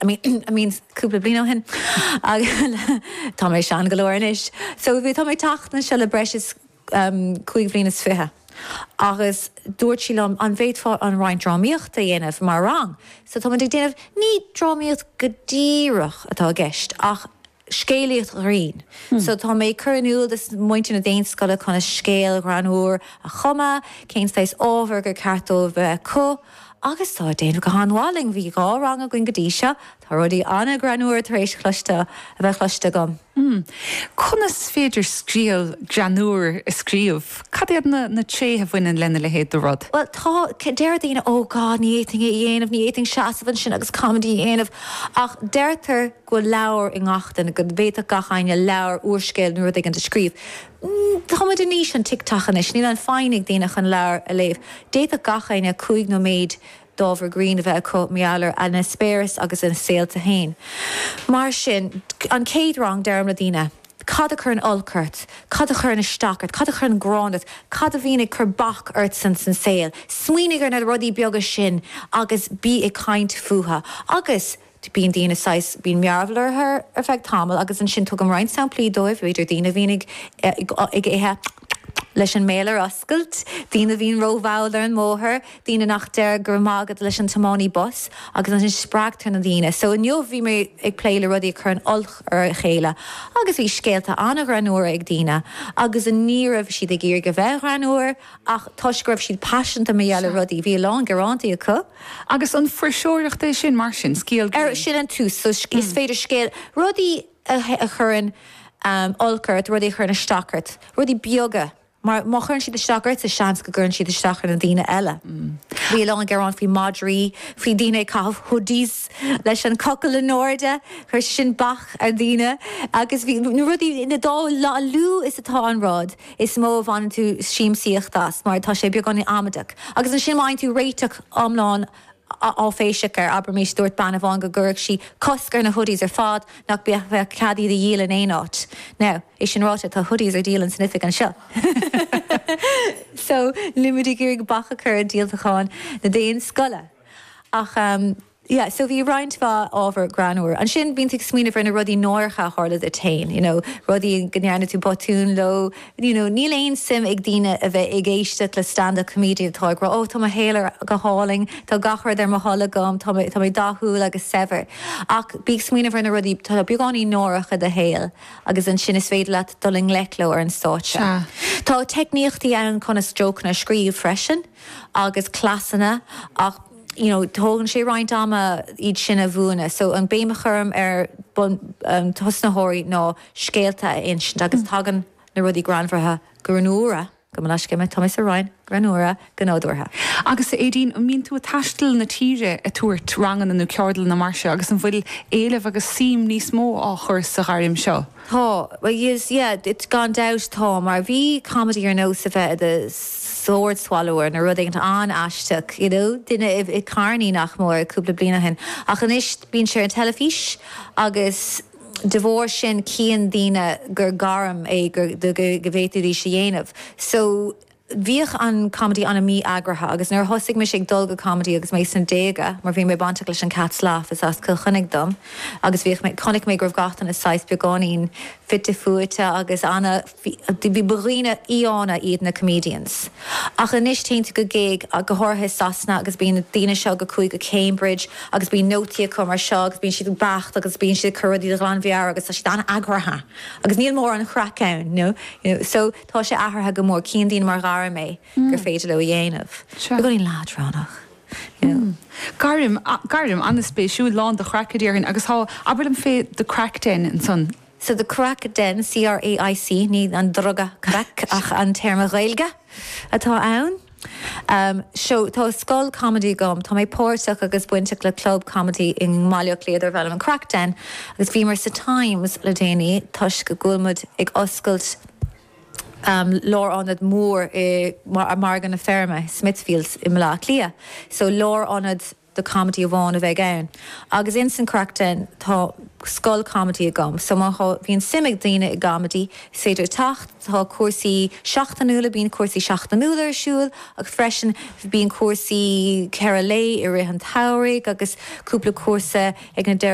I mean, I mean cúpla bliain ó shin agus tá mé sean go leor anois. So tá mé ag teacht anseo le breis is ehm cúig bhliain is fiche agus dúirt sí liom an bhféadfá roinnt drámaíochta a dhéanamh mar rang? So tá muid ag déanamh, ní drámaíocht go díreach atá i gceist ach. Scéalaíocht ghrinn. So tá mé ag cur in iúl do mhuintir na Daonscoile conas scéal greannmhar a chumadh, cén saghas ábhair gur ceart dóibh a bheith acu agus tá ag déanamh go han-mhaith linn. Bhí dhá rang againn go dtí seo, tá rudaí an-ghreannmhar tar éis cloiste, a bheith cloiste agam. Conas is féidir scéal greannmhar a scríobh? Cad iad na tréithe a bhaineann lena leithéid de rud? Bhuel, tá, deir daoine, oh god, ní fhéadfainn é a dhéanamh, ní fhéadfainn seasamh ansin agus comedy a dhéanamh ach deirtear, go bhfuil leabhar i ngach éinne, go bhféadfadh gach éinne leabhar, úrscéal nó rud éigin a scríobh. Tá muid in aois an TikTok anois, níl an foighne ag daoine chun leabhar a léamh. D'fhéadfadh gach éinne cúig nóiméad d'ábhar grinn a bheith acu mar gheall ar a n-eispéireas agus a saolta féin. Mar sin, an chéad rang, deirim le daoine, Cad a chuireann olc ort? Cad a chuireann isteach ort? Cad a chuireann gráin ort? Cad a bhíonn ag cur bac ort san saol? Smaoinigh ar na rudaí beaga sin agus bí ag caint fúthu. Agus, Bíonn daoine saghas, bíonn mearbhall orthu ar feadh tamaill agus ansin tugaim roinnt samplaí dóibh, b'fhéidir daoine a bhíonn ag ithe leis an mbéal ar oscailt, daoine a bhíonn rómhall ar an mbóthar, daoine nach deir 'go raibh maith agat' leis an tiománaí bus agus ansin spreagtar na daoine. So inniu bhí muid ag plé le rudaí a chuireann olc ar a chéile agus bhí scéalta an-ghreannúr ag daoine agus ní raibh siad ag iarraidh a bheith greannúr ach toisc go raibh siad paiseanta mar gheall ar rudaí, bhí a lán gearántaí acu. Agus an fuirseoireacht é sin mar sin, scéal grinn? Sin an tús, so is féidir scéal, rudaí a chuireann olc ort, rudaí a chuireann isteach ort, rudaí beaga, mar má chuireann siad isteach ortsa, seans go gcuireann siad isteach ar na daoine eile. Bhí a lán gearán faoi mhadraí, faoi daoine ag caitheamh hoodies leis an cochall in airde, chuir sé sin bac ar dhaoine, agus bhí na rudaí, na dá, a lú is atá an rud, is mó a bhaineann tú siamsaíocht as mar tá sé beagáinín amaideach agus ansin má fhaigheann tú réiteach iomlán áiféiseach air, abraimis, dúirt bean amháin go gcuirfeadh sí cosc ar na hoodies ar fad, nach mbeadh cead iad a dhíol in aon áit. Now, é sin ráite, tá hoodies ar díol in san oifig anseo so níl muid ag iarraidh bac a chur ar dhíoltachán na Daonscoile ach. yeah so bhí roinnt mhaith ábhar greannmhar. Ansin bíonn tú ag smaoineamh ar na rudaí náireacha a tharla duit féin, you know rudaí go ndearna tú botún leo, you know níl aon suim ag daoine a bheith ag éisteacht le stand up comedian atá ag rá oh tá mo shaol ar go hálainn, tá gach rud ar mo thoil agam, tá mé tá mé dathúil agus saibhir. Ach bí ag smaoineamh ar na rudaí atá beagáinín náireach i do shaol agus ansin is féidir leat dul i ngleic leo ar an stáitse. Sea. Tá teicníochtaí ann conas jócanna a scríobh freisin agus cleasanna ach. you know, tógann sé roinnt ama iad sin a bhuanú, so an béim a chuirim ar thosaitheoirí ná scéalta a insint agus tagann na rudaí greannmharaithe greannmhara, gabh mo leithscéal, tá mé sa Roinn, greannmhara go nádúrtha. Agus Éadaoin, an mbíonn tú ag taisteal na tíre ag tabhairt ranganna nó ceardlanna mar seo agus an bhfuil éileamh agus suim níos mó á cur sa ghairm seo? Tá, is, yeah, it's, gan dabht tá, mar bhí comedy ar nós a bheith i do sword swallower nó rud éigin an-aisteach, you know, duine i carny nach mór cúpla bliain ó shin ach anois bíonn sé ar an teilifís agus de bharr sin cíonn daoine gur gairm é go bhféadfaidís a dhéanamh so Bhíodh an comedy ana mí-eagraithe agus nuair a thosaigh mise ag dul go comedy agus mé sna déaga, mar bhí mé bainteach leis an Cats Laugh is as Cill Chainnigh dom, agus bhíodh, chonaic mé go raibh gach duine saghas beagáinín fite fuaite agus ana-fhi ba dhaoine fiáine iad na comedians. Ach anois téann tú go gig, go háirithe i Sasana, agus bíonn na daoine seo go cuaigh go Cambridge agus bíonn nótaí acu mar seo agus bíonn siad beacht agus bíonn siad ag cur rudaí de ghlanmheabhair agus tá siad ana-eagraithe agus níl mórán craic ann, you know, you know, so. Tá sé athraithe go mór, cíonn daoine mar ghairm é gur féidir leo a dhéanamh, beagáinín leadránach, you know. Gairm, gairm an-spéisiúil, lán de chraic a déarfainn, agus tá, abair liom fé The Craic Den ansan. So The Craic Den, C-R-A-I-C, ní an druga crack ach an téarma Gaeilge atá ann. Seo tá scoil comedy agam. Tá mé páirteach agus bainteach le club comedy i mBaile Átha Cliath darbh ainm an Craic Den agus bhíomar sa Times le déanaí toisc go bhfuil muid ag oscailt lárionad mór i Margadh na Feirme, Smithfield, i mBaile Átha Cliath. So lárionad. do comedy amháin a bheidh ann agus ins an Craic Den tá scoil comedy agam so má tá, bíonn suim ag daoine i gcomedy is féidir teacht, tá cúrsaí seachtainiúla, bíonn cúrsaí seachtainiúla ar siúl agus freisin bíonn cúrsaí ceithre lae i rith an tsamhraidh agus cúpla cúrsa ag na